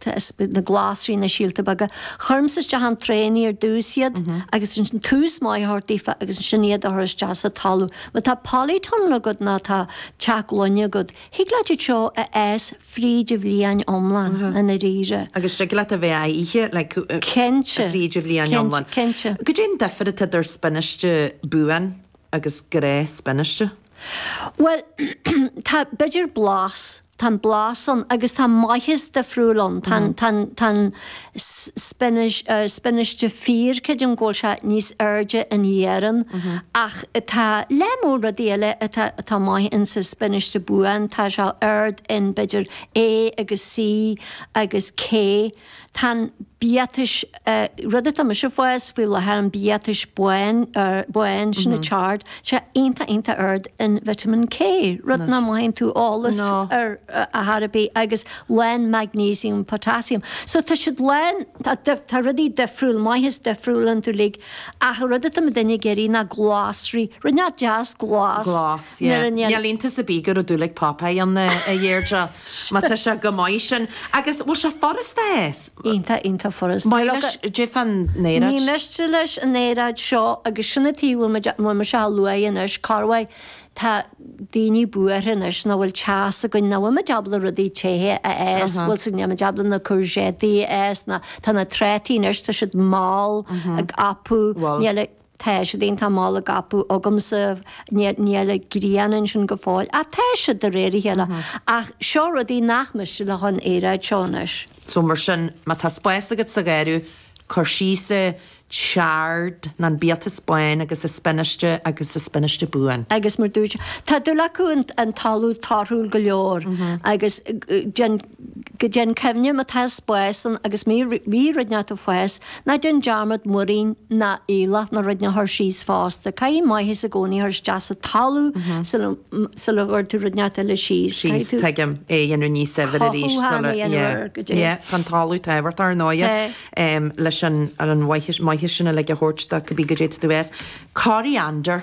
Thaispeáin na Glasraí na síolta beaga. Chuir mise isteach in trayannaí ar dtús iad agus ansin tús maith a thabhairt daofa agus ansin iad a chur isteach sa talamh. Má tá polytunnel agat ná tá teach gloine agat, thig leat iad seo a fhás fríd an bhliain iomlán i ndairíre. Agus thig leat a bheith á ithe like Cinnte. fríd an bhliain iomlán. Cinnte, cinnte. Cad é an difir atá idir spionáiste buan agus gnáthspionáiste? Bhuel, tá b'fhéidir blas Tá an blas ann agus tá maitheas difriúil ann. Tá an, tá an, tá an spionáis, spionáiste fíor, creidim go bhfuil sé níos airde in iarann ach tá lear mór rudaí eile atá, atá maith in sa spionáiste buan. Tá sé ard in b'fhéidir A agus C agus K. Tá an biatas, rud atá mise ag fás faoi láthair, an biatas bán, sin an chard, sé iontach iontach ard in vitamin K, rud nach mothaíonn tú eolas air ar chor ar bith agus lán magnesium, potassium. So tá siad lán, tá rudaí difriúil, maitheas difriúil iontu uilig ach rud atá muidinne ag iarraidh ná glasraí, rud inteacht deas glas nuair a. Glas, yeah. Níl iontas ar bith go raibh dúil ag Popeye ann a Dheirdre. Má tá sé go maith, sin. Agus bhfuil sé furasta é? Iontach, iontach furasta. Maith leis, d'fhéadfá an aeráid. Ní miste leis an aeráid seo agus sin an taobh a bhfuil mise á lua anois, thairbhe, tá daoine buartha anois nach bhfuil teas againn, nach bhfuimid ábalta rudaí te a fhás, bhuel sin, nílimid ábalta na courgette a fhás ná tá na trátaí anois, tá siad mall, ag apú, níl a. Tá siad iontach mall ag apú agamsa, níl an ghrian ansin go fóill, ach tá siad de réir a chéile. Ach seo rudaí nach miste leofa an aeráid seo anois. So mar sin, má tá spás agat sa gharradh, cuir síos an chard nó an biatas bán agus an spionáiste agus an spionáiste buan. Agus mar dúirt, tá dúil acu in talamh torthúil go leor agus déan. Go deimhin, cuimhnigh má tá spás ann agus má bhí rud inteacht ag fás, ná déan dearmad múirín nó aoileach nó rud inteacht a chur síos fosta. Caithfidh maitheas i gcónaí a chur isteach sa talamh sula sula gcuir tú rud inteacht eile síos. Caithfidh síos, tú tuigim, é a dhéanamh níos saibhir arís cothú sula thana dhéanamh yeah, air, go dtí. yeah, tá an talamh tábhachtach, ar ndóighe, Tá. em, leis an ar an mhaitheas maitheas sin uilig a thabhairt do cibé caidé atá tú a fhás. Coriander.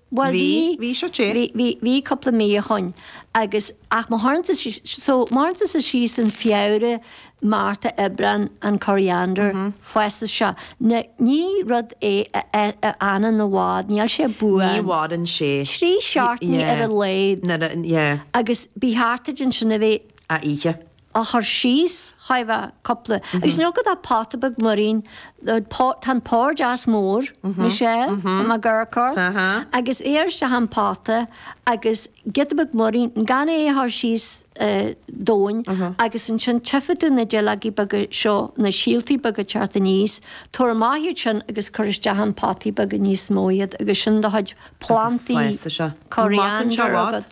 Bhuel bhí, bhí seo te. Bhí, bhí, bhí cúpla mí ó shoin agus, ach mo tharna sí, so má chuireann tusa síos in Feabhra, Márta, Aibreán an coriander, fosta seo na, ní rud é a a fhanann i bhfad, níl sé buan. Ní mhaireann sé. Trí seachtainí ar a laghad. Nuair a, yeah. Agus ba cheart duit ansin a bheith á ithe. á chur síos chomh mhaith cupla acu nó má tá pota beag muirín tá an pór deas mór anois é i mo gharraí agus isteach i bpota agus giota beag muirín gan é a chur síos domhain agus ansin tífidh tú na duilleogaí beaga seo na síoltaí beaga teacht aníos tabhair amach iad sin agus cuir isteach in potaí beaga níos mó iad agus sin do chuid plantaí coriander agat.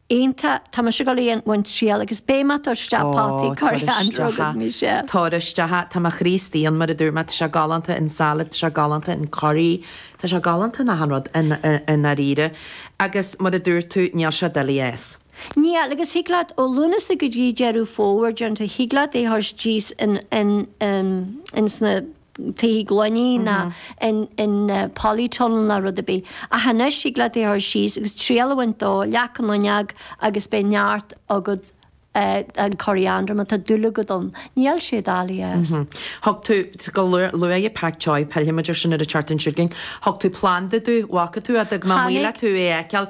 Aontaím, tá mise ag dul a dhéanamh triail agus beidh mé, tabhair isteach potaí curtha an rugair mise. Tabhair isteach, tá mé, a Chríostaí, mar a dúirt mé, tá sé galánta in salad, tá sé galánta in curry, tá sé galánta in achan rud i ndáiríre agus mar a dúirt tú, níl sé doiligh fás. Níl, agus thig leat ó Lúnasa go dtí Deireadh Fómhair déarfá, thig leat é a chur síos in sna. tithe gloine ná in polytunnel ná rud ar bith. Ach anois, thig leat é a chur síos agus triail a bhaint de, leac na fuinneoige agus beidh neart agat de coriander má tá dúil agat ann. Níl sé doiligh fás. Thug tú, luaigh tú Pak Choi, pillfidh muid ar sin ar an tseachtain seo chugainn, thug tú planda domh, an bhfaca tú fhad, agam amuigh le tú é a fheiceáil,